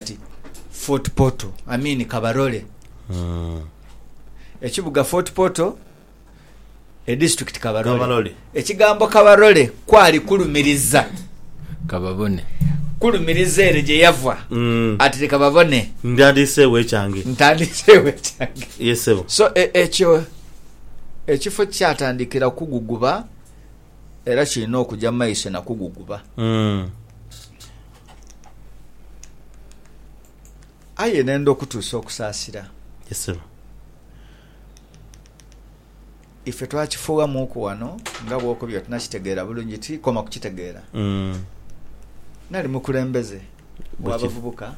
Kati Fort Portal, I mean Kabarole, ekibuga Fort Portal, edistrict Kabarole. Kabarole. Ekigambo Kabarole kwali kulumiriza, Kababone. kulumiriza ere gye yava ati leka babone Ndyandiiseewo ekyange. ntandiseewo ekyange. Ye ssebo. So e- ekyo ekifo kyatandikira kuguguba era kirina okugya mu maiso na kuguguba. Mm. Aye nenda okutuusa okusaasira. Yes sebo. Ife twakifuughamuuku ghano nga bw'okobye oti nakitegeera bulungi ti koma kukitegeera. Nali mukulembeze w'abavubuka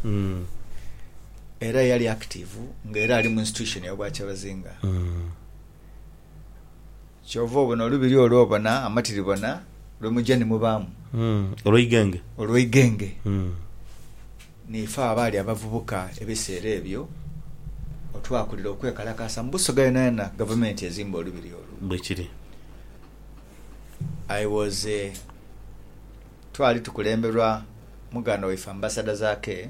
era eyali akitiivu nga era ali mu Institution y'Obwakyebazinga. Kyova obona olubiri olwo obona amatiribona lwe muja ni mubaamu. Olweigenge. Olweigenge. Niife abaali abavubuka ebiseera ebyo otwakulira okwekalakaasa mu Busoga yonayona Gavumenti ezimba olubiri olwo. Bwekiri. I was a Twali tukulemberwa muganda waife Ambassador Zaake.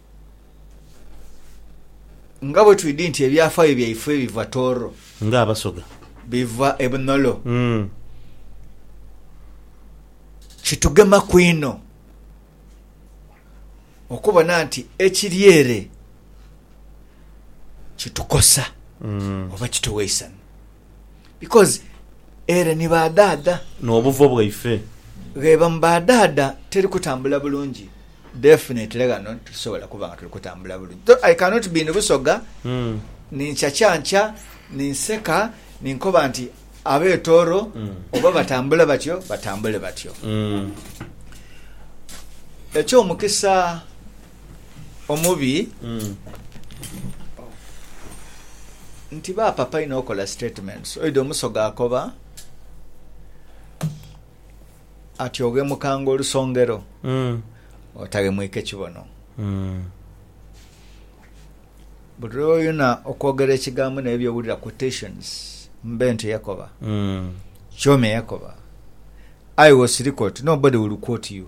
Nga bwe twidhi nti ebyafaayo byaife biva Tooro. Nga Abasoga. Biva e Bunolo. Kitugemaku inho okubona nti ekiri ere kitukosa oba kituwa eisanhu. Because ere ni ba dhaadha. N'obuvo bwaife. Gheba mu ba dhaadha teri kutambula bulungi. Definitely ghano titusobola kuba nga tuli kutambula bulungi. Though I cannot be ni Busoga, ni nkyakyankya, ni nseka, ni nkoba nti ab'e Tooro oba batambula batyo, batambule batyo. Eky'omukisa. omubi nti bapapa inho okola statements oidha omusoga akoba ati oghemukanga olusongero otaghemwike kibono buli lwoyuna okwogera ekigambo naye byowulira quotations mbe nti yakoba kyomi eyakoba aye wosirika oti nobody will quote you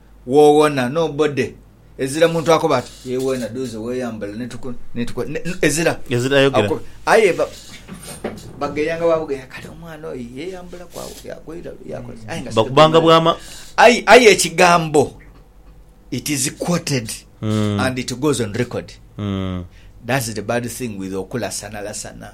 wowona no body ezira muntu akoba ati ye wena duuze weyambala netuku netuku ezira ezira ayogera aye bageyanga babugeya kale omwana oyo yeyambula kwa yakoira yakoira aye nga bakubanga bwama aye aye ekigambo it is quoted mm. and it goes on record mm. that's the bad thing with okulasana lasana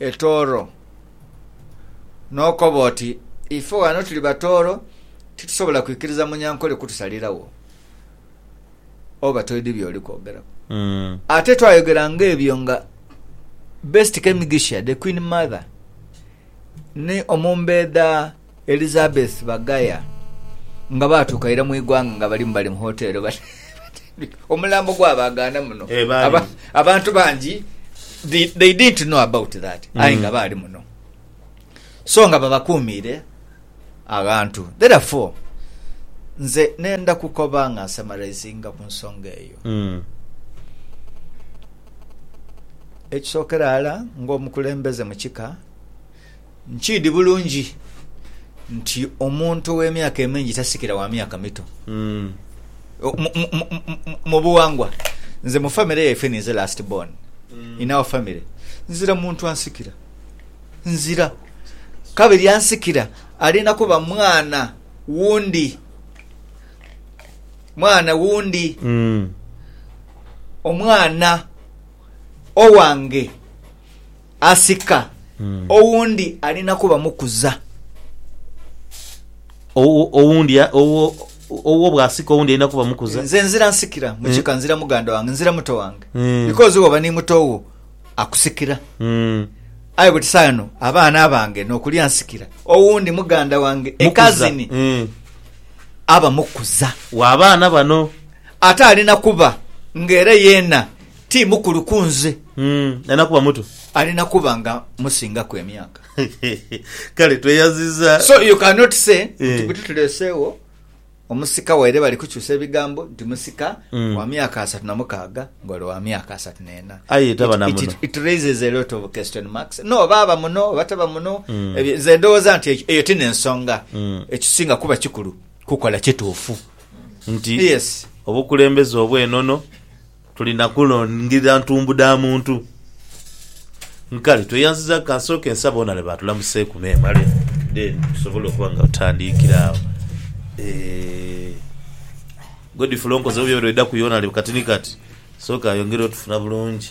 etooro. N'okoba oti, Ife ghano tuli batooro, titusobola kwikiriza Munyankole kutusaliragho. Oba toidhi by'oli kwogeraku. Ate twayogera ng'ebyo nga Best Kemigisha, The Queen Mother, ni Omumbeedha, Elizabeth Bagaya nga baatuuka ira mu ighanga nga balimu bali mu hoteero batendwike omulambo gwa baagaana muno Eh, baali. Aba- abantu bangi they, they didn't know about that aye Mm. nga baali muno so nga babakuumiire aghantu therefore nze nenda kukoba nga nsamarizinga ku nsonga eyo Mm. ekisookera ghala ng'omukulembeze mu kika Nkiidhi bulungi nti omuntu ow'emyaka emingi tasikira wa myaka mito. O- mu- mu- mu- mu- mu buwangwa nze mu famire yaife ninze last born in our family nzira muntu ansikira nzira kabiri ansikira alinda kuba mwana wundi mwana wundi omwana owange Asika owundi alina kuba mukuza. Owundi owuwo bwasika owundi alina kuba mukuza. Nze nzira nsikira mukika nzira muganda wange nzira muto wange because woba ni muto wo akusikira aye buti sawa eno abaana abange nokulia nsikira owundi muganda wange a cousin aba mukuza wabaana bano ate alina kuba nga era yena ti mukulu ku nze. Mm, alina kuba muto. Alina kuba nga musingaku emyaka. Kale tweyaziza. So you cannot say Eh. nti buti tuleeseewo omusika waire bali kukyusa ebigambo nti musika Mm. wa myaka asatu na mukaaga nga ole wa myaka asatu n'ena. Aye taba It- na it- muno. it- It raises a lot of question marks. No, oba aba muno oba taba muno. Mm. Ebyo- Nze ndowooza nti ekyo- eyo ti n'ensonga. Mm. Ekisinga kuba kikulu kukola kituufu. Nti Yes. obukulembeze obw'enono Tuli na kulangirira ntumbu dha muntu. Nkale tweyanziza kansooke nsabe Onale baatulamuseeku memale then tusobole okuba nga tutandiikira agho. Eeh Godfrey onkozeeku byona byedaku ye Onale kati ni kati. Sooka yongera otufuna bulungi.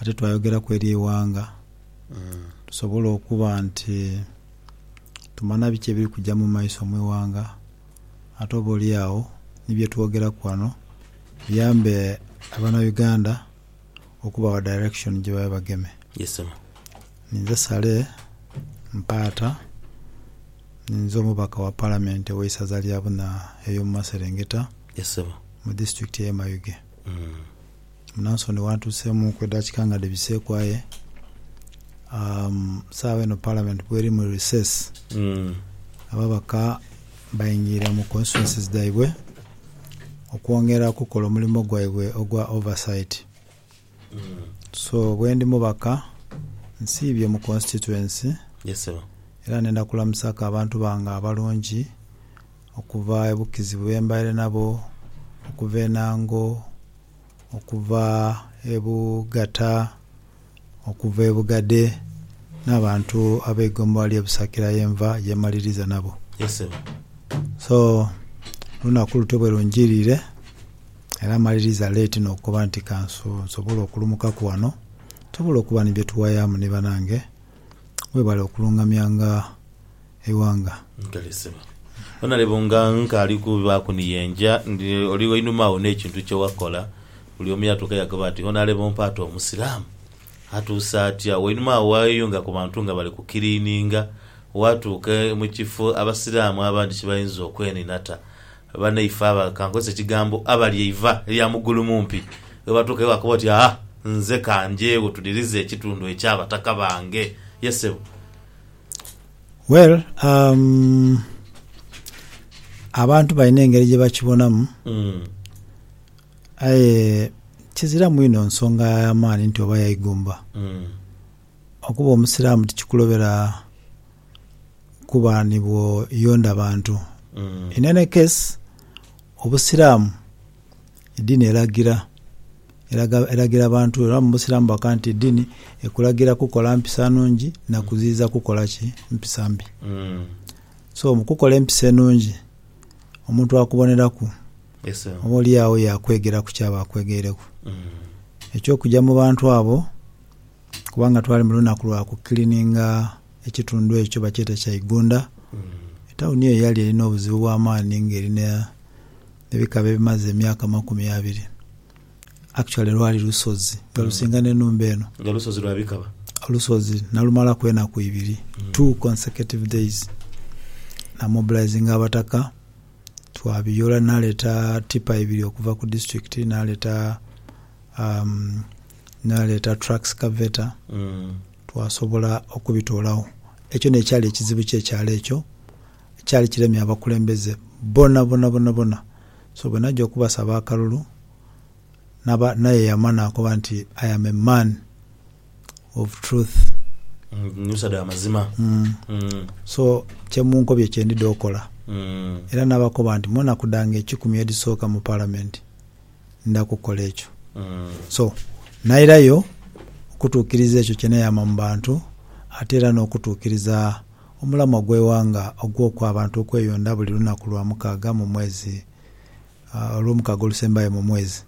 ate twayogeraku eri eighanga, tusobole okuba nti tumanha biki ebiri kuja mu maiso mu ighanga, ate oba oli agho ni bye twogeraku ghano biyambe abanauganda okubawa direction gye babe bageme. Ninze Saleh Mpaata, ninze omubaka wa Palamenti ow'eisaza lya Buna ey'omu maserengeta mu disitulikiti ey'e Mayuge. Munansoni waatuuseemuuku edhaakika nga dhibiseeku aye saagha eno Parliament bweri mu recess, ababaka baingiire mu constituencies dhaibwe okwongera okukola omulimo gwaibwe ogwa oversight. So bwendi mubaka nsiibye mu constituency era nenda kulamusaaku abantu bange abalungi okuva e Bukizi bwembaire nabo, okuva e Nango, okuva e Bugata, okuva e Bugade n'abantu ab'eigombolola ly'e Busakira ye nva ye maliriza nabo. Yes ssebo. So, olunaku lutyo bwe lunjiirire era maliriza leeti n'okukoba nti ka nsobole okulumukaku wano tusobole okuba ni bye tuwayaamu ni banange. Webale okulungamyanga. eighanga. Nkelesebwa. Wena leba nga nkaali kubibaaku ni ye nja, ndi oli wainuma agho n'ekintu kye wakola. Buli omu yatuuka yakoba ati, Wena leba ompaate Omusiraamu? Atuuse atya? Wainuma agho waayeyunga ku bantu nga bali kukiliininga, waatuuka mu kifo Abasiraamu abandi kye bayinza okweninata. Banaife aba, ka nkozese ekigambo, abali eiva lya mugulumumpi, ghebatuukayo wakoba oti, Aa, nze ka njeegho tudirize ekitundu eky'abataka bange. Ye ssebo. Well umm abantu balina engeri gyebakibonamu aye kizira mwino nsonga yamaani nti oba yaigomba okuba omusiramu tikikulobera kuba nibwoyonda bantu in any case obusiramu edini elagira elagira abantu era mubusiramu bakoba nti edini ekulagira kukola mpisa nungi na kuziyiza kukola ki? mpisa mbi. So mukukola empisa enungi omuntu akuboneraku oba olyagho yakwegeraku kyaba akwegeireku ekyokuja mubantu abo kubanga twali mulunaku lwa ku cleaninga ekitundu ekyo bakyeta kya igunda etauni eyo yali erina obuzibu bwamaani nga erina ne bikaba ebimaze emyaka amakumi abiri actually lwali lusozi nga lusinga ne numba eno nga lusozi lwa bikaba olusozi nalumalaku enaku ibiri two consecutive days namobilizinga abataka twabiyola naleta tipa ibiri okuva ku district naleta umm naleta truck scavator twasobola okubitolagho ekyo nekyali ekizibu kye kyalo ekyo Ekyali kiremye abakulembeze bona bona bona bona. So bwe naja okubasaba akalulu naba naye yama nakoba nti I am a man of truth. Musadha wa mazima. So kye munkobye kye ndidha okola. Era nabakoba nti mu naku dhange ekikumi edhisoka mu palamenti ndidha kukola ekyo. So nairayo okutukiriza ekyo kye neyama mu bantu ate era n'okutukiriza. Omulamwa gw'eighanga ogw'okwa abantu okweyondha buli lunaku lwa mukaaga mu mwezi, olw'omukaaga olusembayo mu mwezi.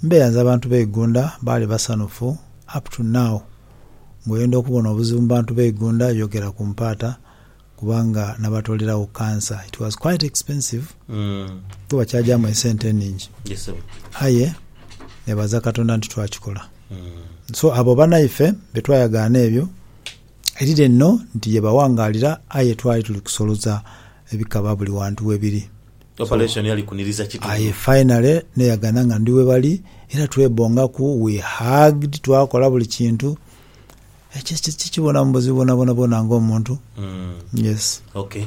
Mbeyanze abantu be Igunda baali basanhufu up to now. Nga oyenda okubona obuzibu mu bantu be Igunda yogera ku mpaata kubanga nabatoleragho cancer. It was quite expensive kuba bakyagyamu esente eningi aye nebaza Katonda nti twakikola. So abo banaife betwayagaana ebyo. Erire nho nti ye bawangaalira aye twali tuli kusoloza ebikaba buli wantu we biri. Operation yali kuniriza kitundu. Aye finally neyagana nga ndi we bali era twebongaku, we hugged, twakola buli kintu. Ekyo kye kibonamu buzibu bwonabwona bwona ng'omuntu. Yes. Ok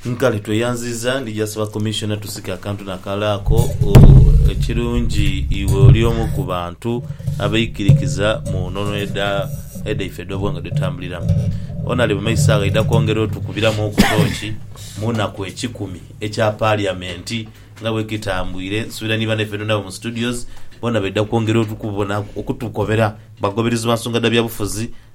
nkale tweyanziza ndija saba commissioner tusike akantu nakale ako ekirungi iwe oli omu kubantu abeikirikiza munono edaife edhobwanga dwetambuliramu onali mumaiso agho aidha kwongera otukubiramu ku toki munaku ekikumi ekya parliament nga bwekitambwire nsubira ni banaife nabo mu studios bona baidha kwongera okutukobeera bagoberezi bansonga dha byabufuzi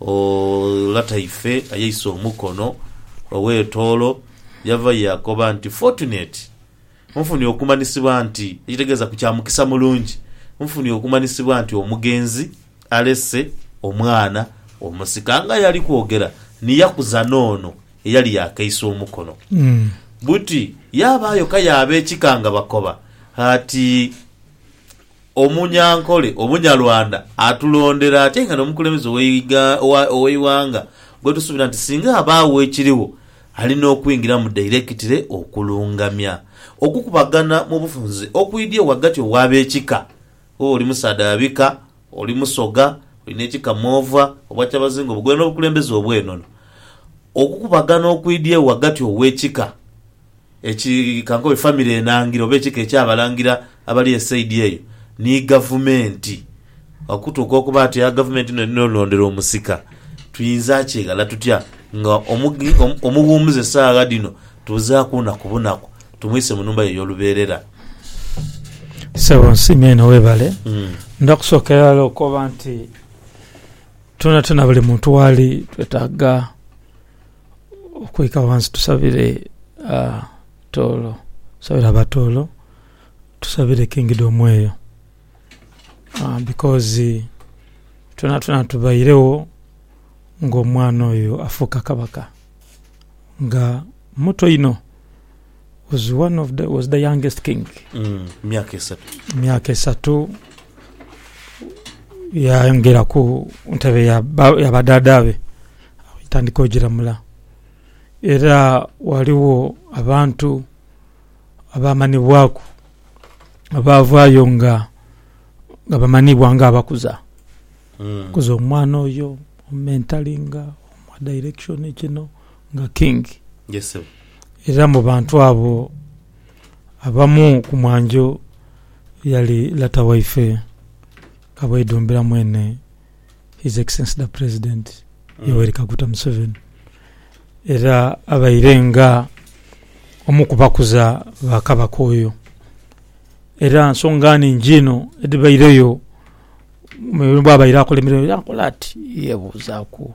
O lata ife ayeisa omukono ow'etoolo yava yaakoba nti, Fortunate, nfunye okumanyisibwa nti, ekitegeeza ku kya mukisa mulungi, nfunye okumanyisibwa nti omugenzi alese omwana omusika. Nga aye ali kwogera ni yakuza n'ono eyali yaakeisa omukono buti, yaabaayo ka y'abekika nga bakoba ati. Omunyankole Omunyarwanda atulondera ate nga n'omukulembeze ow'eighanga gwetusuubira nti singa abaagho ekirigho alina okwingiramu dairekitire okulungamya okukubagana mu bufunze okwidhie ghagati ow'abekika oba oli musaadha wa bika, oli musoga, olina ekika mwova, Obwakyabazinga obugwere n'obukulembeze obw'enono. Okukubagana okwidhie ghagati ow'ekika. Ekika nkobe, famire enangira oba ekika eky'abalangira abali esaidi eyo ni gavumenti. Okutuuka okuba nti eya gavumenti n'eno elondera omusika, twinza kyeghala tutya nga omuwumuze saagha dhino tubuzaaku naku bunaku tumwise mu nhumba ye ey'olubeerera? Sebo nsiime inho webale. Ndidha kusookera ghala okoba nti twonatwona buli muntu waali twetaaga. Okwika ghansi tusabire Tooro, tusabire aba Tooro, tusabire Kingdom omweyo bikozi twonatwona tubairegho nga omwana oyo afuuka Kabaka nga muto inho. was one of the, was the youngest king. Mm, myaka esatu. Myaka esatu yayongera ku ntebe ya badada be tandika ogiramula era waliwo abantu abamanibwaku abavayo nga nga bamanibwa nga abakuza mm. kuza omwana oyo omentalinga omwa direction kino nga King. Yes sebo. Era mu bantu abo abamu ku mwanjo yali lata waife Kabwedhombera mwene His Excellency the President Yoweri Kaguta Museveni era abaire nga omu ku bakuza ba Kabaka oyo. Era nsonga nhingi inho edhibaireyo bwabaire akola emirimo era nkola ati, yebuuzaaku.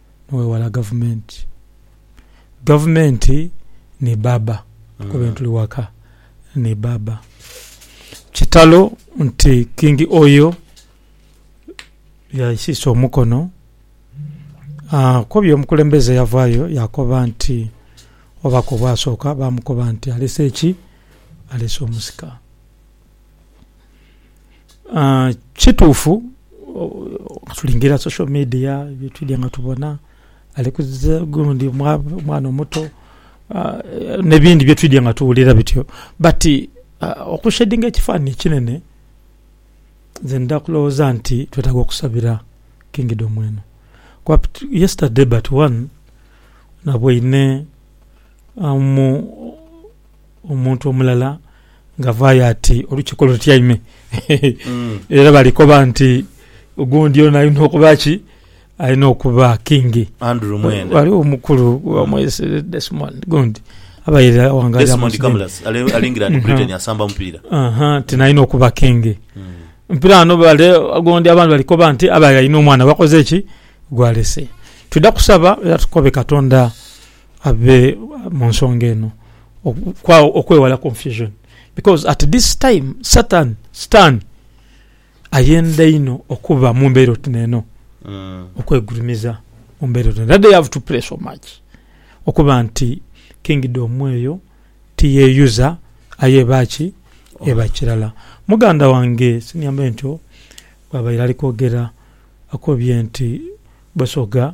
nowewala gavumenti. Gavumenti ni bbaabba kuko bentuli ghaka ni bbaabba. Kitalo nti Kingi Oyo yaisiisa omukono akoba omukulembeze yavaayo yakoba nti obubaka obwasooka baamukoba nti aleese ki? Aleese omusika. kituufu tulingirira social media twidhye nga tubona ali kuziza gundi mwana omuto n'ebindi byetwidhye nga tuwulira bityo bati okushedinga ekifanhanhi ekinene nze ndidha kulowooza nti twetaaga okusabira kingidhomu eno kuba yesitade bati wanu nabwoine mu. Omuntu omulala ng'avaayo ati, Olukiiko lutyaime era bali koba nti gundi ono alina okuba ki? Alina okuba kingi. Andrew Mwenda. Ghaligho omukulu bamwese Desmond gundi abaire awangalira Desmond Museveni. Kamulasi ali ali England Mhm. Britain asamba mupiira. Aha, nti nalina okuba kingi. Mpira ghano bale gundi abandi bali koba nti abaire alina omwana gwakoze ki? Gwalese. Twidha kusaba era tukobe Katonda Abe mu nsonga eno okwewala confusion because at this time satan, sitani, ayenda inho okuba mu mbeera oti neeno, okwegulumiza mu mbeera oti neeno. That they have to pray so much okuba nti kingdom eyo tiyeyuza aye eba ki? Eba kirala. Muganda wange senior mentor bwabaire ali kwogera akobye nti Busoga,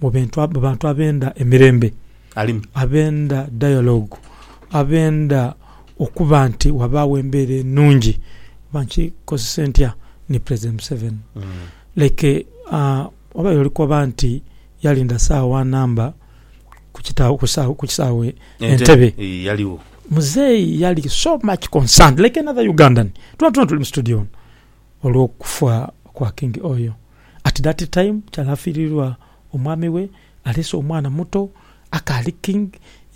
mu bintu mu bantu abenda emirembe, abenda dialogue, abenda okuba nti wabaagho embeera enungi oba nkikozese ntya ni President Museveni. Like oba oli kukoba nti yalinda saawa wa namba ku kita ku kisaawe ku kisaawe Entebbe, Muzeeyi yali so much concerned like another Ugandan. Twona twona tuli mu studio muno. olw'okufa kwa Kingi oyo. At that time kyali afiirirwa omwami we, aleese omwana muto akaali King,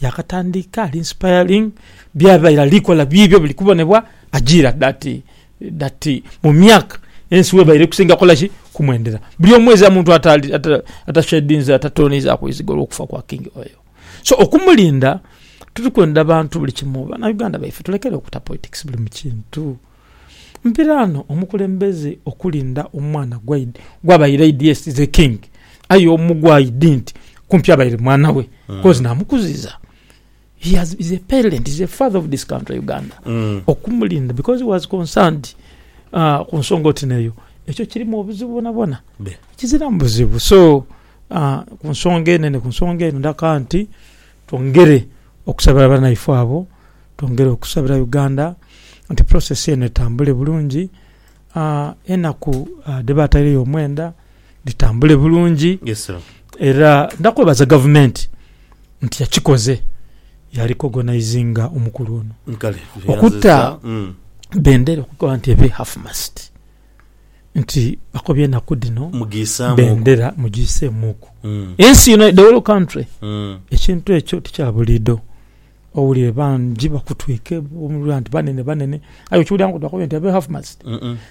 yaakatandika ali inspiring, byabaire ali kola biibyo biri kubonebwa ajiira that that mu myaka ensi webaire eri kusinga kukola ki? Kumwendera. Buli omwezi a muntu atashedinze, atatooneizaku izigo olw'okufa kwa Kingi oyo. So okumulinda, turi kwenda bantu buli kimu, Banauganda baife tulekere okuta politics buli mu kintu. Mpira no omukulembeze okulinda omwana gwaidi gwabaire aidhi yes the king aye omu gwaidi nti kumpi abaire mwana we coz namukuziza he has is a parent is a father of this country Uganda okumulinda because he was concerned aah kunsonga oti neyo ekyo kirimu obuzibu bwonabwona? Kiziramu buzibu so aah kunsonga eno ni kunsonga eno ndaka nti Twongere okusabira banaife abo, twongere okusabira Uganda nti process eno etambule bulungi, enaku dhebataireyo omwenda dhitambule bulungi era nakwebaza gavumenti nti yakikoze ya recognisinga omukulu ono okuta bendera okukoba nti ebe half mast. nti bakobye enaku dhino bendera mugiiseemuuku ensi yona, the whole country. Ekintu ekyo ti kya buliidho. Owulire bangi bakutwike oba nti banene banene aye okiwulira nga bakobye nti abe half mast.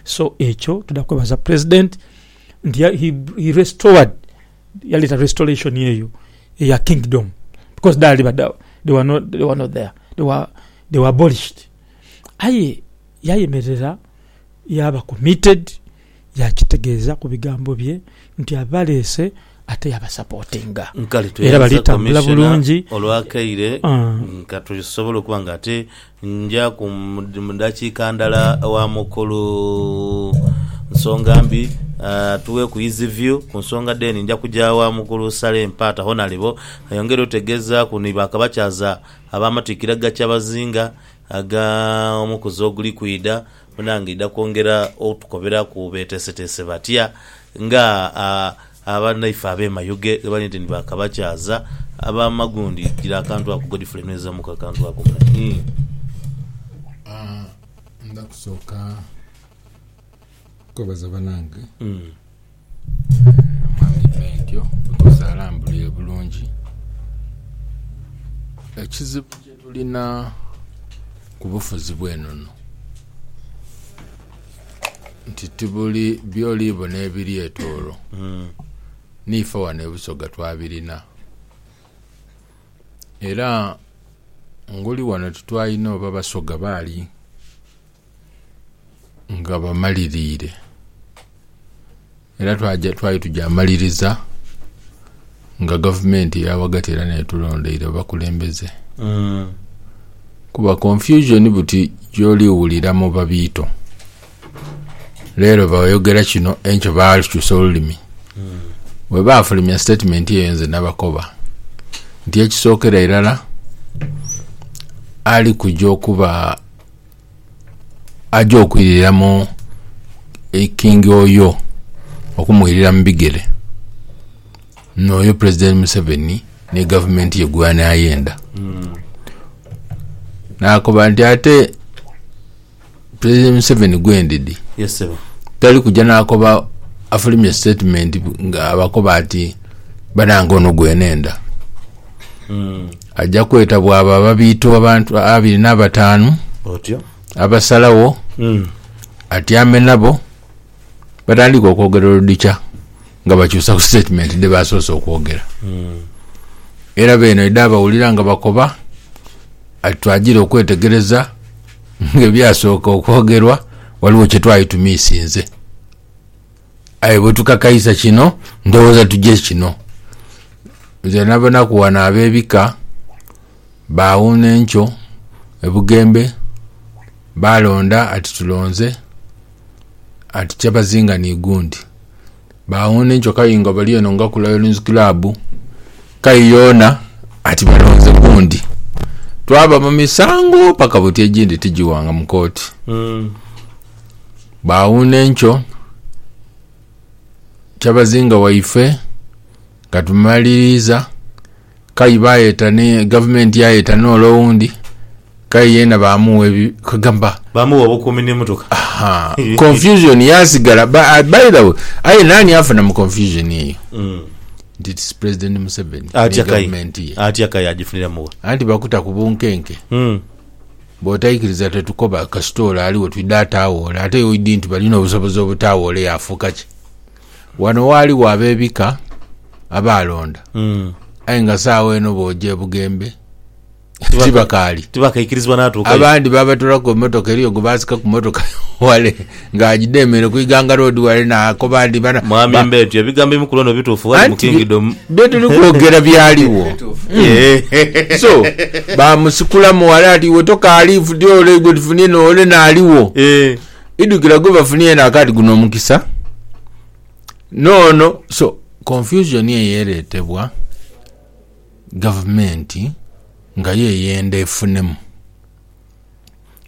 So ekyo tuda kwebaza president nti he restored, yaleta restoration eyo eya kingdom because dhaali badhagho, they were not there, they were abolished. Aye yayemerera. yaaba committed yaakitegeeza ku bigambo bye nti abaleese ate yabasapotinga Nkale era bali tweyanza tambula Commissioner bulungi. olw'akaire Ah. nga tusobola okuba nga ate nja ku mu- mu dakiika ndala wa mukulu Nsongambi atuweeku his view ku nsonga then nja kuja wa mukulu Saleh Mpaata Honalebo ayongere otutegeezaaku ni ba Kabakyaza ab'amatikkira ga Kyabazinga Agha omukuzi oguli kwidha, munange idha kwongera otukoberaku beteeseteese batya nga banaife ab'e Mayuge ghebali nti ni ba Kabakyaza aba Magundi. Gira akantu ako Godfrey nwezamuku akantu ako mule. Ndha kusooka kwebaza banange. Mwami Bentyo bikoze alambulire bulungi. Ekizibu kyetulina ku bufuzi bwenono nti tibuli byoli bona ebiri etooro niife wano e Busoga twabirina era ngoli wano titwalina oba Basoga baali nga bamaliriire era twali tugyamaliriza nga gavumenti eya ghagati era n'etulondeire abakulembeze kuba confusion buti gy'oli wulira mu babiito. Leero bayogera kino enkya baakyusa olulimi. Bwe baafulumya sitetimenti eyo nze nabakoba nti ekisookera irala ali kugya okuba... aja okwirira mu King Oyo okumwirira mu bigere noyo president Museveni ni gavumenti ye gwanayenda nakoba nti ate president Museveni gwendidi Yes ssebo. tali kuja nakoba afulumye statement nga abakoba ati banange ono gwenenda Aja kwetabwa abo ababiita abantu abiri n'abataanu, Otyo. abasalagho, atyame nabo, batandike okwogera oludhikya nga bakyusa ku sitetimenti dhe baasoose okwogera. Era beene oidha abawulira nga bakoba ati twagira okwetegereza ng'ebyasooka okwogerwa ghaligho kye twali tumiisinze. Aye bwe tukakaisa kino, ndowooza tugye kino. Nze nabanaku wano ab'ebika baawuuna enkyo e Bugembe, baalonda ati tulonze ati Kyabazinga ni gundi. Baawuuna enkyo Kayingo bali eno nga ku Lions Club, Kayi yoona ati balonze gundi. Twaba mu misango paka buti egindi tigiwanga mu kooti. Baawuuna enkyo, kyabazinga waife nga tumaliriiza, kayi baayeta ni gavumenti yaayeta n'ole owundi, kayi yeena baamugha ebi, kwegamba, Baamugha obukuumi n'emotoka. ha, confusion yaasigala. Ba- ah, By the way, aye naani afuna mu confusion eyo? Nti it's President Museveni ni Atya kayi. gavumenti ye. Atya kayi agifuniramu wa? Anti bakuta ku bunkenke. Mm. Bwotaikiriza tetukoba kasita ole ali we twidha ataawoola. Ate oidhi nti balina obusobozi obutaawoola yaafuuka ki? Wano waaliwo ab'ebika abaalonda, aye nga saagho eno booja e Bugembe tibakaali. Tibakaikirizibwa natuukayo. Abandi baabatoolaku ku mmotoka eriyo gwe baasika ku mmotoka wale Nga aidha emere ku Iganga Road wale naakoba nti bana. Mwami Mbeetu, ebigambo ebimu ku lwono bituufu ghali mu Kingdom. Anti bye tuli kwogera byaligho. So, baamusikulamu wale ati, Iwe tokaali ifuti ole gwe tufunye n'ole n'aligho. Idhukira gwe bafunye yena akaba ati, Guno omukisa. N'ono. So, confusion eyo ereetebwa gavumenti nga yo eyenda efunemu.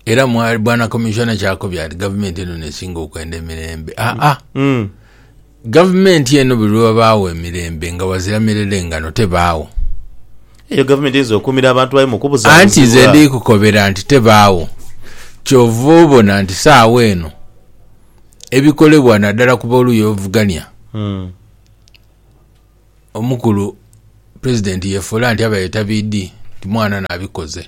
era mwali bwana komishona kyakobya nti gavumenti eno nesinga okwenda emirembe aa ah, ah. mm. gavumenti eno buli lwebabaawo emirembe nga wazira mirere ngano tebaawo eyo gavumenti eyinza okuumira abantu bayo mukubuza anti nze ndikukobera nti tebaawo kyova obona nti saawa eno ebikolebwa naddala ku boluuyi obuvugania mm. omukulu president yefuula nti abaye tabidi nti mwana nabikoze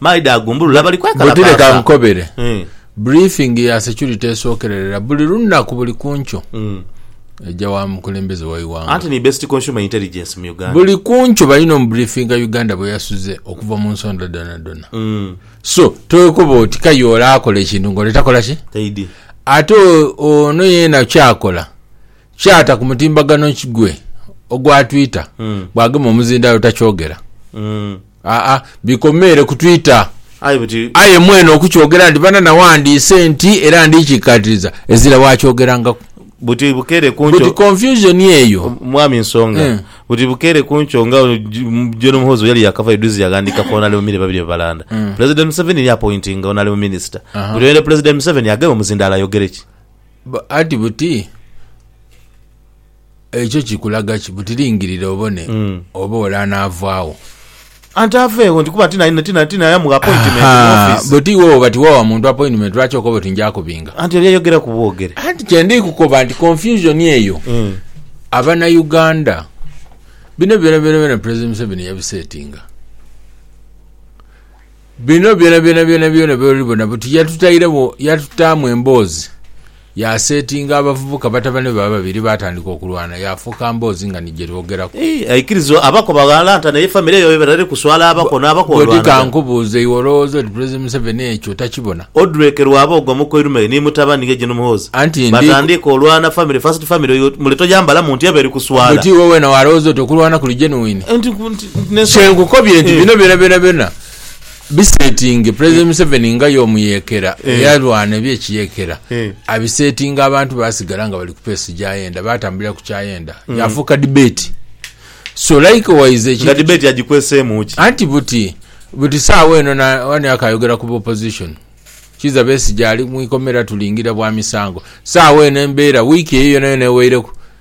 Maidha agumbulula bali kwekalakaasa. Buti leka nkukobere. Briefing ya security esookererera buli lunaku buli ku nkyo eja wa mukulembeze wa ighanga. Anti ni best consumer intelligence mu Uganda. Buli ku nkyo balina omubriefinga Uganda bwe yasuze okuva mu nsonda dhonadhona. So towekoba oti k'aye ole akola ekintu ng'ole takola ki? Taidhi. Ate ono yeena ky'akola ky'ata ku mutimbagano gwe ogwa Twitter bw'agema omuzindaalo takyogera. Aa, bikomeere ku Twitter. Aye buti. Aye mwene okukyogera nti bana nawandiise nti era ndikikatiriza, ezira wakyogerangaku. Buti bukeere ku nkyo. Buti confusion eyo. Mwami Nsonga, Eh. buti bukeere ku nkyo nga J- John Muhoozi yali yakavayo duzzi yaghandiika ku Honourable Mire babiri babalanda. President Museveni ya appointinga Honourable Minister. Buti oyo President Museveni agema omuzindaalo ayogere ki? Ba- Ati buti. Ekyo kikulaga ki? Buti lingirira obone oba ole anaavaagho. Anti aveegho nti kuba tinaya mugha apointimenti mu ofisi. Buti iwe bwoba tiwawa muntu apointimenti lwaki okoba oti nja kubinga? Anti oli ayogeraku bwogere. Anti kye ndi kukoba nti confusion eyo Abanauganda bino byona byona Pulezidenti Museveni yabisetinga. Bino byonabyona byonabyona by'oli bona buti yatutairegho, yatutaamu emboozi, yaasetinga abavubuka batabane be ababiri baatandika okulwana, yaafuuka mboozi nga ni gye twogeraku. Ii, Aikiriza abako baghalanta naye famire yaibwe batandika kuswala abako n'abako olwanaga. Bwoti ka nkubuuze, iwe olowooza oti Pulezidenti Museveni ekyo takibona? Odrek Rwaboogo omukoirumeghe ni mutabani ye Gen Muhoozi Anti ndi. batandika olwana famire, first family, oyo mule toyambalamu nti eba eri kuswala. Bwoti iwe weena waalowooza oti okulwana kuli genuine? Nti, nti. Kyenkukobye nti bino byonabyona bisetinge President Museveni nga y'omuyekera eyalwana ebyekiyekera abisetinga abantu basigala nga bali kupeesi gyayenda batambulira kukyayenda yafuuka debate so likewise ekintu nga debate agikweseemu ki? Anti buti buti saawa eno wani akayogera ku opposition kiiza Besigye ali mwikomera tulingira bwa misango saawa eno embeera wiiki eyo yonayona eweireku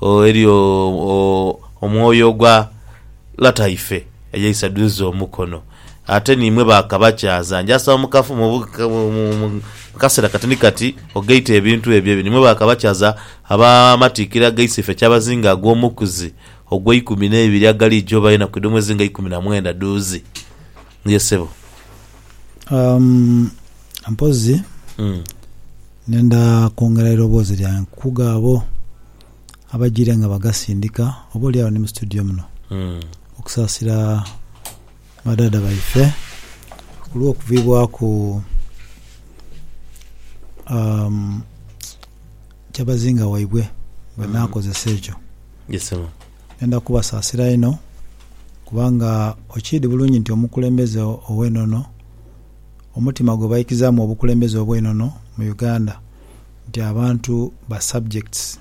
Oh, eri o, o, omwoyo ogwa lataife eyaisa dhuuze omukono. Ate niimwe ba kabakyaza, njasaba mu kafu, mu, mu, mu kaseera katini kati ogaite ebintu ebyo ebiri, nimwe ba kabakyaza ab'amatiikira agaise ife kyabazinga ag'omukuzi ogw'eikumi n'eibiri agaliija obayo enaku edh'omwezi nga ikumi na mwenda dhuuze. Ye ssebo. Um, mpozi mm. nenda kwongera eiroboozi lyange nkukuga abo abajire nga bagasindika oba olyawo ni mu studio muno mm. okusasira badada baife olwokuvibwaku um, kyabazinga waibwe bwenakozesa ekyo yes, Ndenda kubasaasira inho, kubanga okiidhi bulungi nti omukulembeze ow'enono, omutima gwe baikizaamu obukulembeze obw'enono mu Uganda, nti abantu ba subjects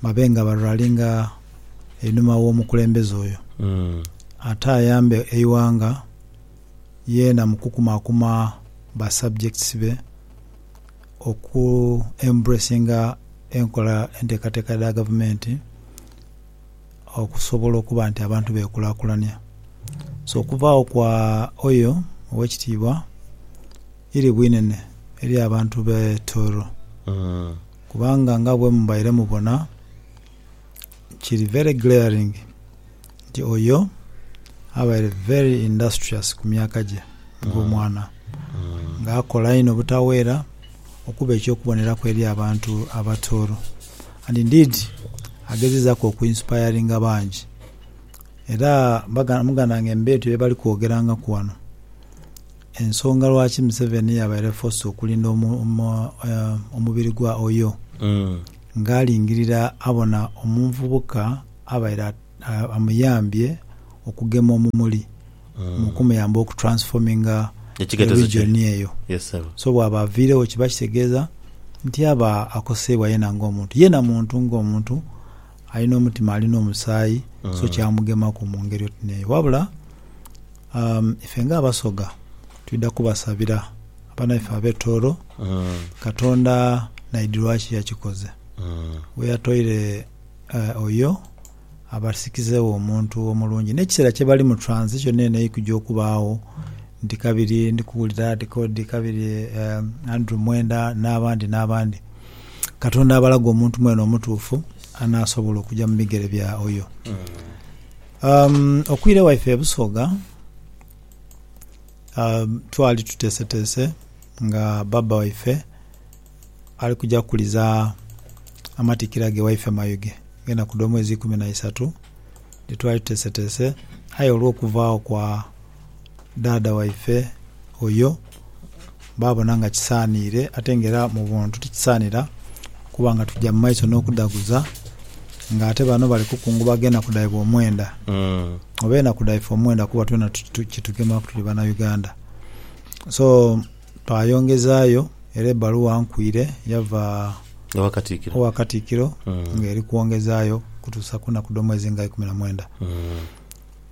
babe nga ba rallinga einhuma w'omukulembeze oyo, ate ayambe eighanga yeena mu kukumakuma ba subjects be. oku embracinga enkola enteekateeka dha gavumenti okusobola okuba nti abantu beekulakulania. So okuvaagho kwa Oyo Owekitiibwa iri bwinene eri abantu b'e Toro, kubanga nga bwemubaire mubona, kiri very glaring nti oyo abaire very industrious ku myaka gye nga omwana, nga akola inho obutaweera okuba eky'okuboneraku eri abantu abatooro and indeed agezezaku oku inspiringa bangi era muganda wange mubaitu byebali kwogerangaku wano ensonga lwaki Museveni yabaire forced okulinda omubiri gwa Oyoo. Nga alingirira abona omunvubuka abaire amuyambye okugema omumuli mu kumuyamba oku transforminga eregion eyo. So bwaba aviiregho kiba kitegeeza nti aba akoseibwa yena nga omuntu. Yena muntu nga omuntu alina omutima alina omusaayi so kyamugemaku mungeri oti neeyo wabula. A Ife nga Abasoga twidha kubasabira banaife ab'e Tooro. Katonda naidhi lwaki yakikoze we yatoire oyo abasikizeegho omuntu omulungi n'ekiseera kye bali mu transition eno eikujja okubaagho nti kabiri ndi kuwulira ti k'odi kabiri Andrew Mwenda n'abandi n'abandi. Katonda abalage omuntu mwene omutuufu anaasobola okuja mu bigere bya oyo. Um, okwire waife e Busoga um, twali tuteeseteese nga baaba waife ali kuja kuliza amatikkira ge waife Mayuge ag'enaku dh'omwezi ikumi na isatu. Ni twali tuteeseteese aye olw'okuvaagho kwa. dhaadha waife oyo baabona nga kisaaniire ate nga era mu buntu tikisaanira kuba nga tuja mu maiso n'okudhaguza nga ate bano bali kukungubaga enaku dhaibwe omwenda oba enaku dhaife omwenda kuba twena kitugemaku tuli Banauganda. So twayongezaayo era ebbaluwa nkwiire yava owa Katikkiro ng'eri kwongezaayo kutuusa ku naku dh'omwezi nga ikumi na mwenda.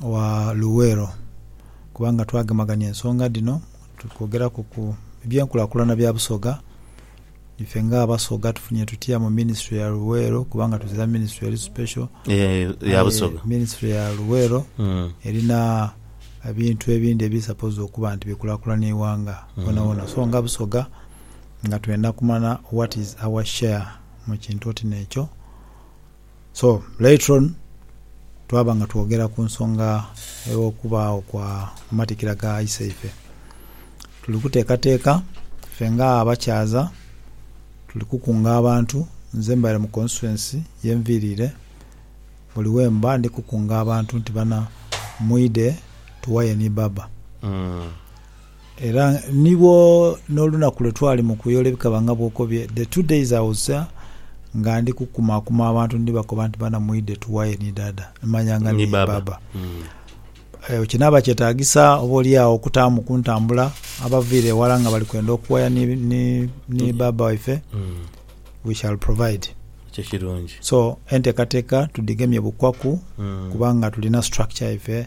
wa Luwero kubanga twagemagania ensonga dhino tukwogeraku ku byenkulakulana bya Busoga. Ife nga Abasoga tufunye tutya mu minisitule ya Luweero kubanga tuzira minisitule eri special. Aye minisitule ya Luweero erina ebintu ebindhi ebiri supposed okuba nti bikulakulana eighanga wonawona so nga Busoga nga twendha kumanya what is our share mu kintu oti n'ekyo. So later on twaba nga twogera ku nsonga ey'okubaagho kwa matikira ga isaife. Tuli kuteekateeka ffe nga abakyaza tuli kukunga abantu, nze mbaire mu constituency ye nviiriire, buli wemba ndi kukunga abantu nti bana mwidhe tuwaye ni Baba. Era ni bwo n'olunaku lwe twali mu kuyoola ebikaba nga bw'okobye, the two days I was there, nga ndi kukumaakuma abantu ndibakoba nti, Bana mwidhe tughayo ni Daada, manya nga ni Bbaabba. Ekyo kinaaba kyetaagisa oboolyawo okutaamu ku ntambula abaviire eghala nga bali kwenda okuwaya ni, ni, ni Bbaabba waife? We shall provide. Ekyo kirungi. So, enteekateeka tudhigemye bukwaku, kubanga tulina structure yaife.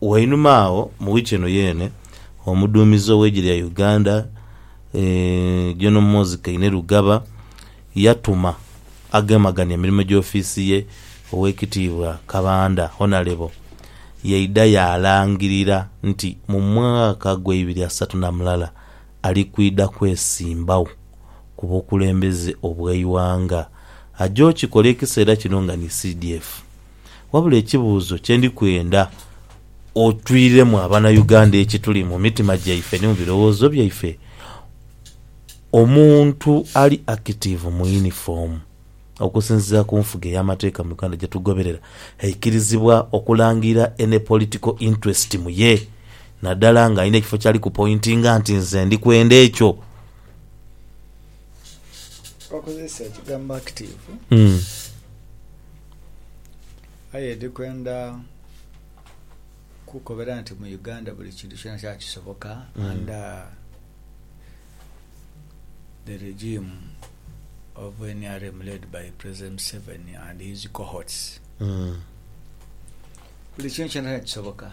Wainuma agho mu wiiki eno yeene, omuduumizi ow'eigye lya Uganda, Gen Muhoozi Kainerugaba yatuma agemagania emirimo gy'ofiisi ye, Oweekitiibwa Kabanda, Honalebo, yaidha yaalangirira nti mu mwaka gwa ibiri asatu na mulala ali kwidha kwesimbagho ku bukulembeze obw'eighanga. Aja okikola ekiseera kino nga ni CDF. Wabula ekibuuzo kye ndi kwenda otwiremu Abanauganda ekituli mu mitima gyaife ni mu birowoozo byaife, omuntu ali active mu uniform okusinziira ku nfuga ey'amateeka mu Uganda gye tugoberera aikirizibwa okulangira any political interest mu ye nadala nga alina ekifo kyali ku pointinga nti nze ndi kwenda ekyo. Wakozesa ekigambo active. Aye ndi kwenda kukukobera nti mu Uganda buli kintu kyonakyona kisoboka under the regime of nrm led by President Museveni and his cohorts. Buli kintu kyonakyona kisoboka.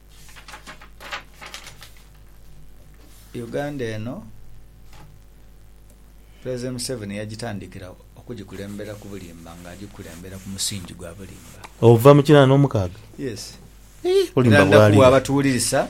Uganda eno Pulezidenti Museveni yagitandikira okugikulembera ku bulimba nga agikulembera ku musingi gwa bulimba. Ova mu kinaana omukaaga? Yes. Era ndakuwa abatuwulirisa.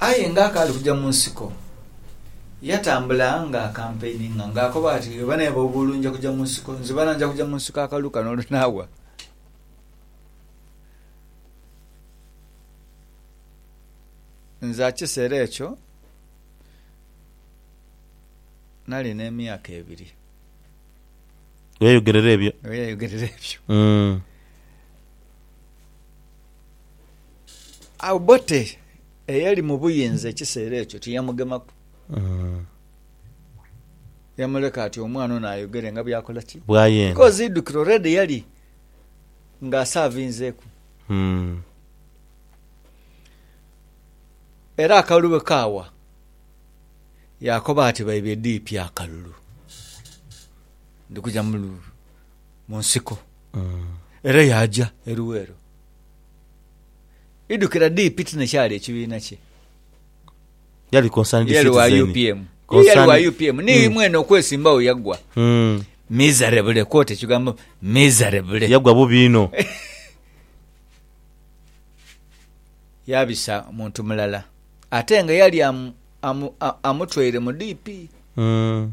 Aye ng'akaali kuja mu nsiko, yatambula ng'akampeinhinga ng'akoba ati, Oba naye bw'obuulu nja kuja mu nsiko, nzibana nja kuja mu nsiko akalu kano olunaawa. Nze akiseera ekyo nali n'emyaka ebiri. Ghe yayogerera ebyo. Ghe yayogerera ebyo. Mm. Obote eyali mu buyinza ekiseera ekyo tiyamugemaku. Yamuleka ati omwana ono ayogere nga byakola ki? Bwayenga. Because idukire already yali nga asavinzeku. Era akalulu bwe kaawa, yaakoba ati baibye dipi akalulu. Ndi kuja mu. mu nsiko era yaaja e Luweero. Idhukira dii Piti ne kyali ekibiina kye. Yali concerned Ye yali wa citizen. UPM. Ye yali wa Concerned- UPM. Ni mwene okwesimbawo yaggwa. Mm. Miserable. Quote ekigambo miserable. Yagwa bubi inho. Yaabisa muntu mulala. Ate nga yali amu, amu, a- amutwaire mu DP. Mm.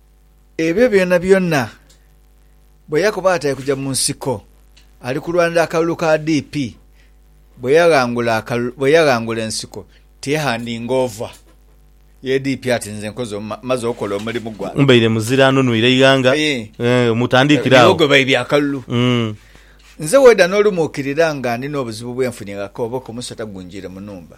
Ebyo byonabyona bwe yakoba ati ali kuja mu nsiko ali kulwanira akalulu ka DP, bwe yaghangula ensiko tiyaghandingoova ye DP ati nze maze okola omulimu gwange. Mbaire muzira anunwire eighanga mutandikire agho. Niwo gwe baibye akalulu. Nze weda n'olumu okirira nga ndi n'obuzibu bwe nfunye nga koboka omusota gunjiire mu nhumba.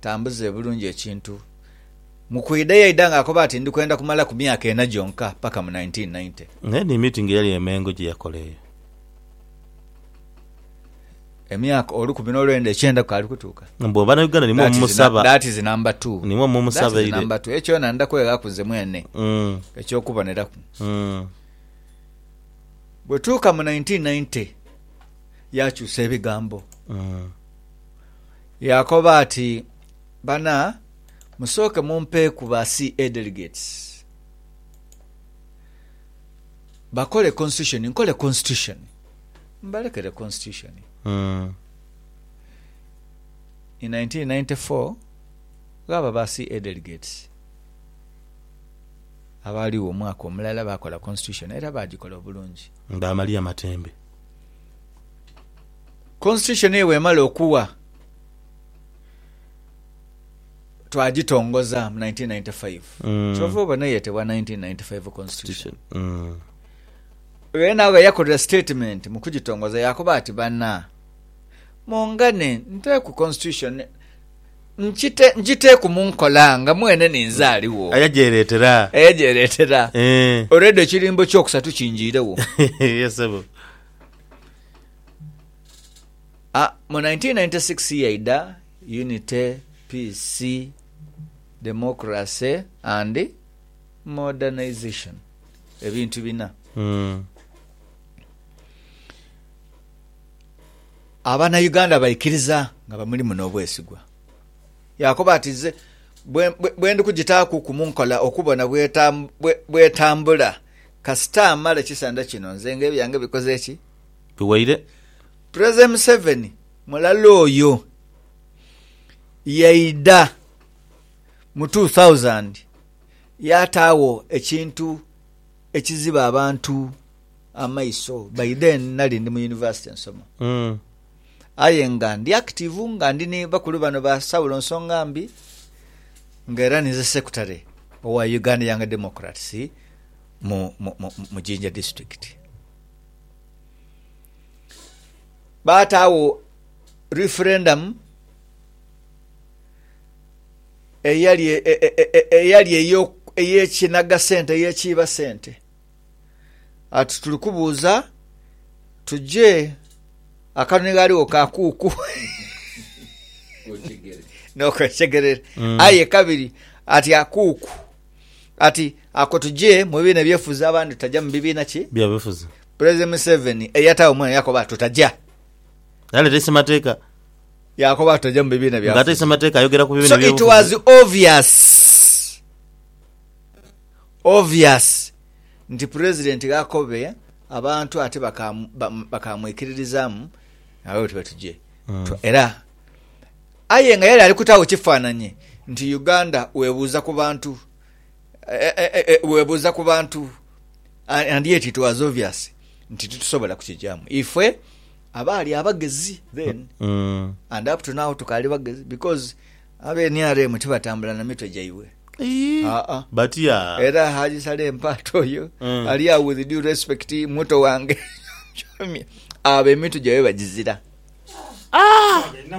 Tambuza bulungi ekintu. Mu kwidha yaidha ng'akoba ati, Ndi kwenda kumalaku myaka ena gyonka, paka mu nineteen ninety. Aye ni meeting eyali e Mengo gye yakola eyo. Emyaka olukumi n'olwenda ekyenda kwali kutuuka. Mbu Banauganda nimwo That is nu- mumusaba. that is number two. Nimwo That is mumusabaire. number two. Ekyo kyona ndidha kweghaku nze mwene Mm, eky'okuboneraku. mm. Bwetuuka mu nineteen ninety, yaakyusa ebigambo. Mm. Yaakoba ati, Bana, musooke mumpeeku ba CA delegates bakole Constitution nkole Constitution. Mbalekere Constitution. In nineteen ninety four, ghaba ba CA delegates abaaligho omwaka omulala baakola Constitution era baagikola obulungi. Nga Amalia Matembe. Constitution eyo bwemala okuwa twagitongoza mu 1995 mm. kyova obona eyetebwa 1995 constitution mm. era nawe yakolera statement mu kugitongoza yakoba ati bana mungane nteku constitution Nkite, nkiteeku mu nkola nga mwene ninze aligho. Aye gyereetera. Aye gyereetera. Eeh. Olwedho ekirimba eky'okusatu kinjiiregho. Ye ssebo. A, mu 1996 yaidha Unity, Peace, Democracy and Modernization. Ebintu bina. Umm. Abanauganda baikiriza nga bamulimu n'obwesigwa. Yaakoba ati, Nze bwe ndi kugitaaku ku mu nkola okubona bw'etambula, kasita mmala ekisanja kino nze ng'ebyange bikoze ki? Biwaire. Prezida Museveni mulala oyo yaidha mu two thousand yaataagho ekintu ekiziba abantu. amaiso by then nali ndi mu university nsoma aye nga ndi active nga ndi ni bakulu bano ba Saulo Nsongambi nga era ninze secretary owa Uganda Young Democrats mu, mu, mu, mu Jinja district. Baataawo referendum eyali e, e, e, e, eyali eyo- ey'ekinaga sente, ey'ekiiba sente. ati tuli kubuuza tuje akanoni ghaligho ka kuuku nokwesegerera mm. aye kabiri ati akuuku ati ako tuje mu bibiina ebyefuzi abandi tutaja mu bibiina ki byabefuzi president museveni eyatawo omwana yakoba tutaja yaleta esemateeka yakoba tutaja mu bibiina byafe ngate esemateeka ayogera ku bibiina so it was obvious Obvious nti president ghakobe abantu ate bakaamwikiririzamu nga bwebati bwetugye twa era aye nga yali alikutagho kifananhi nti Uganda webuuza ku bantu webuuza ku bantu and yet it was obvious nti titusobola kukigyamu ife abaali abagezi then and up to now tukaali bagezi because Abe nrm tibatambula na mitwe gyaibwe. Haa batya. Era Haji Saleh Mpaata oyo ali agho with due respect muto wange Kyomya abo emitwe gyaibwe bagizira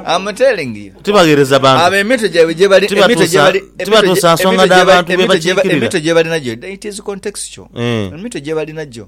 am telling you Tibaghereza bantu. abo emitwe gyaibwe gyebali emitwe Tibatuusa- gyebali tibatuusa nsonga dha bantu be bakiikirira. emitwe gyebalinagyo it is contextual Eh. emitwe gyebalinagyo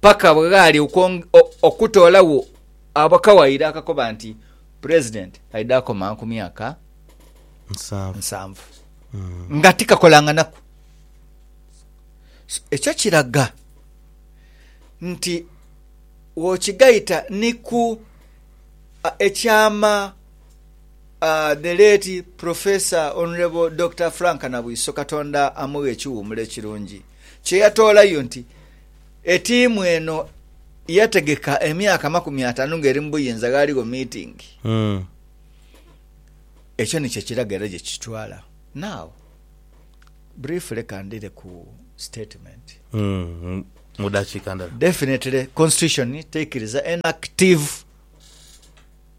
paka bwe ghaali okutoolagho akawaayiro akakoba nti Pulezidenti aidha akoma ku myaka nsanvu nga tikakolanganaku. Ekyo kiraga nti wokigaita ni ku ekyama The late Professor Hon. Dokita Frank Nabwiso, Katonda amughe ekiwumula ekirungi, kye yatoolayo nti, Etiimu eno yategeka emyaka amakumi ataanu ng'eri mu buyinza ghaaligho miitingi. Ekyo ni kye kiraga era gye kitutwala. Now, briefly ka ndhire ku statement. Mu dakiika ndala. Definitely, Constitution teikiriza enactive.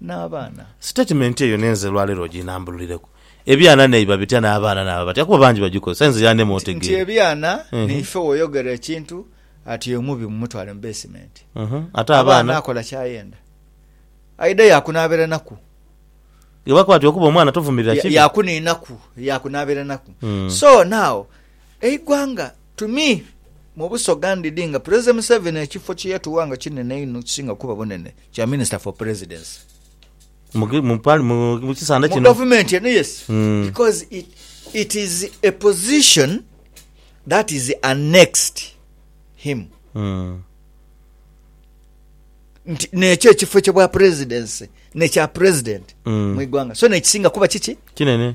n'abaana. Sitatimenti eyo n'enze olwaleero oginambululireku. Ebyana neiba bitya n'abaana naaba batya kuba bangi bagikozesa? Inze y'ani mu nti ebyana neife w'oyogera ekintu ati oyo mubi mumutwale mu beesimenti. Ate abaana? Akola ky'ayenda. Aidha yaakunaabiranaku. Ghebakoba nti okuba omwana tovumirira kibi. Yaakuniinaku, yaakunaabiranaku. So now Eighanga tuni mu busoga ndidhi nga Pulezidenti Museveni ekifo kye yatuwa nga kinene inho ekisinga okuba obunene kya Minisita for Presidency. Mu gavumenti eno, yes, because it is a position that is annexed him nti nekyo ekifo kye bwa Pulezidenti ne kya Pulezidenti mu ighanga so nekisinga kuba kiki? Kinene.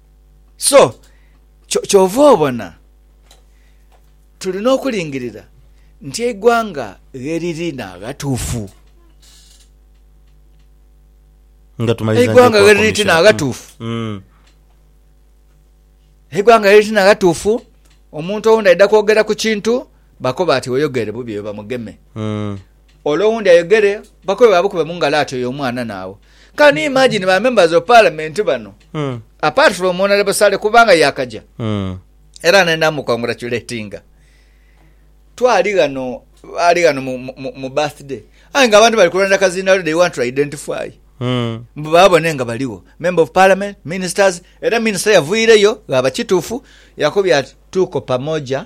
So kyova obona tulina okulingirira nti eighanga gheriri naghatuufu, eighanga gheriri ti naghatuufu, eighanga gheriri ti naghatuufu. Omuntu owundi aidha kwogera ku kintu bakoba ati oyogere bubi oyo bamugeme. Ole owundi ayogere bakobe babukube mungalo ati oyo omwana nawe can you imagine ba members of parliament bano Mm. apart from honorable sale kubanga yakaja Mm. era nenamu congratulatinga twali ghano ali ghano mu, mu, mu- mu birthday aye nga abantu bali kulonda kazindalo they want to identify Mm. mbu babone nga baliwo member of parliament ministers era minister yavuireyo ghaba kitufu yakubye ati tuko pamoja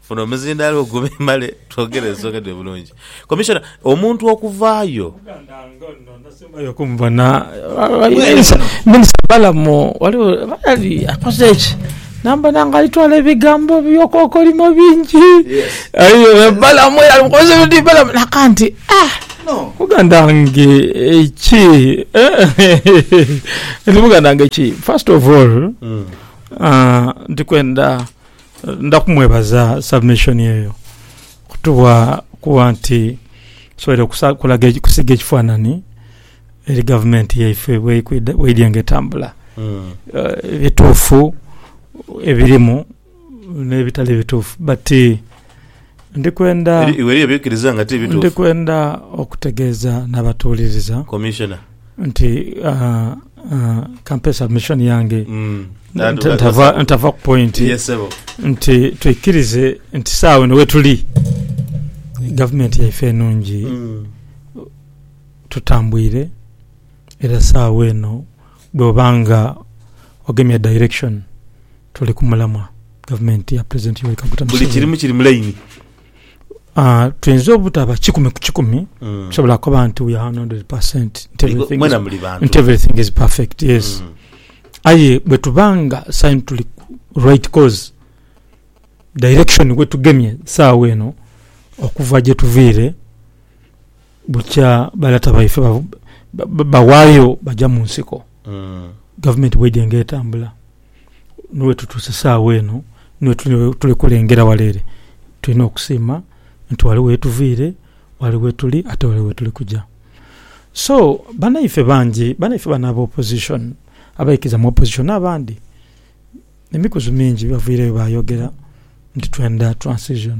Guno omuzindaalo gube male twogere ensonga edho bulungi. Commissioner, omuntu okuvaayo. Omuganda nga ono nasembayo okumubona Minister Balaam waliwo yali akoze ki namubona nga alitwala ebigambo byokokolimo bingi aye Balaam era alimukozesa ebintu bingi Balaam naka nti aah muganda wange ki nti muganda wange ki first of all ndikwenda Ndha kumwebaza submission eyo kutubwa kuba nti tusoboire okulaga okusiiga ekifanhanhi eri gavumenti yaife bweidhye nga etambula, ebituufu ebirimu n'ebitali bituufu but. Ndi kwenda, Eri iwe eriyo by'oikiriza nga ti bituufu? ndi kwenda okutegeeza n'abatuwuliriza Commissioner. nti ah, ah, kampe submission yange Mm. That- nta- that- ntava that's- ntava ku point Yes, sebo. nti twikirize nti saawa eno wetuli gavumenti yaife enungi Mm. tutambwire era saawa eno Bwoba nga ogemya direction tuli ku mulamwa gavumenti ya president Yoweri Kaguta Museveni. Buli kirimu kiri mu line. Uh, tuyinza obutaba kikumi ku kikumi mm. tusobola kuba nti we are 100% nti everything, is, nti everything is perfect yes mm. aye bwetubanga sign tuli right cause direction wetugemye saawa eno okuva gyetuviire Bukya ba lata baife bawayo baja mu nsiko gavumenti bweidhenga etambula ni wetutuuse saagha eno ni wetuli kulengera wala ere. Tulina okusiima nti wali wetuviire, wali wetuli ate wali wetuli kuja. So banaife bangi, banaife bano aba opposition abaikiriza mu opposition n'abandi emikuzu mingi baviireyo bayogera nti twenda transition.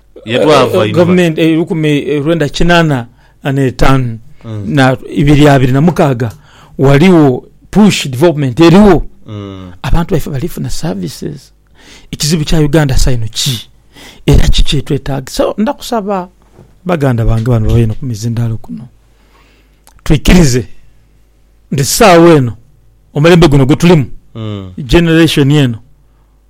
Ye twava inho. Gavumenti eirukumi lwenda kinana n'etaanu na ibiri abiri na mukaaga ghaligho push development erigho abantu baife bali funa services. Ekizibu kya Uganda saino ki era ki kyetwetagisa? Ndakusaba baganda bange bano babaire ni ku mizindalo kuno twikirize nti sawa eno omulembe guno gwetulimu generation eno.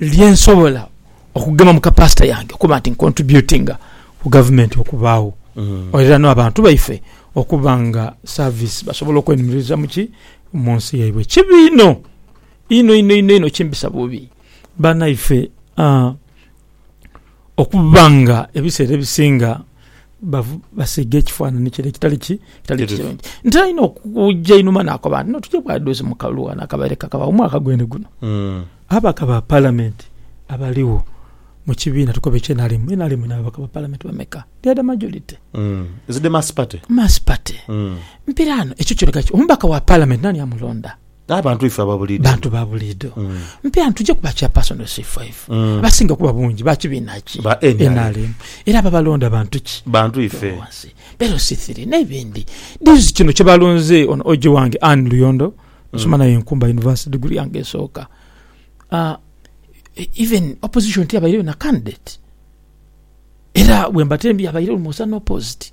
lye nsobola okugema mu capacity yange okuba nti ncontributinga ku gavumenti okubaagho era n'abantu baife okuba nga service basobola okwenhumiriza mu ki? mu nsi yaibwe. Kibi inho inho inho inho inho kimbisa bubi banaife aa. Okuba nga ebiseera ebisinga basiiga ekifaananhi kire ekitali ki, ekitali kirungi. Nte alina okuja einhuma n'akoba nti, No, tuje bwadhozi mu kalulu ghano akabaire kakabagho mwaka gwene guno. Ababaka ba Palamenti abaligho mu kibiina tukobe ekya nrm, nrm elina ababaka ba Palamenti bameka? They are the majority. Is it the Mass Party? Mass Party. Mpiraano ekyo kiraga ki? Omubaka wa Palamenti naani amulonda? Abantu ife aba buliido. Bantu ba buliido. Mpe anti oja kuba Chairperson C5. Abasinga kuba bungi ba kibiina ki? Ba nrm. Era ababalonda bantu ki? Bantu ife. Wansi. Beeru C3. N'ebindi. Dizzy kino kye balonze ono OG wange Ann Luyondo, nasoma naye Nkumba University degree yange esooka. Even Opposition tiyabaireyo na candidate. Era bwemba tembi yabaireyo Lwomusa n'opposed.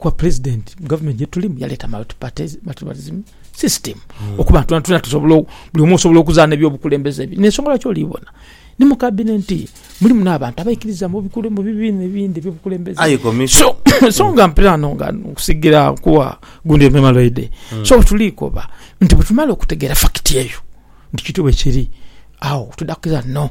Kuba president mu government gyetulimu yaleta multipartyism system hmm. okuba nti tuna tusobola buli omu osobola okuzaana ebyobukulembeze ebyo nensonga lwaki olibona ni mu kabineti mulimu n'abantu abaikiriza mu bibiina ebindi ebyobukulembeze so, so nga mpirano nga nkusigira kuwa gundi emema lwaide hmm. so tuliikoba nti bwetumala okutegeera fakiti eyo nti kityo bwekiri awo tudakukiriza no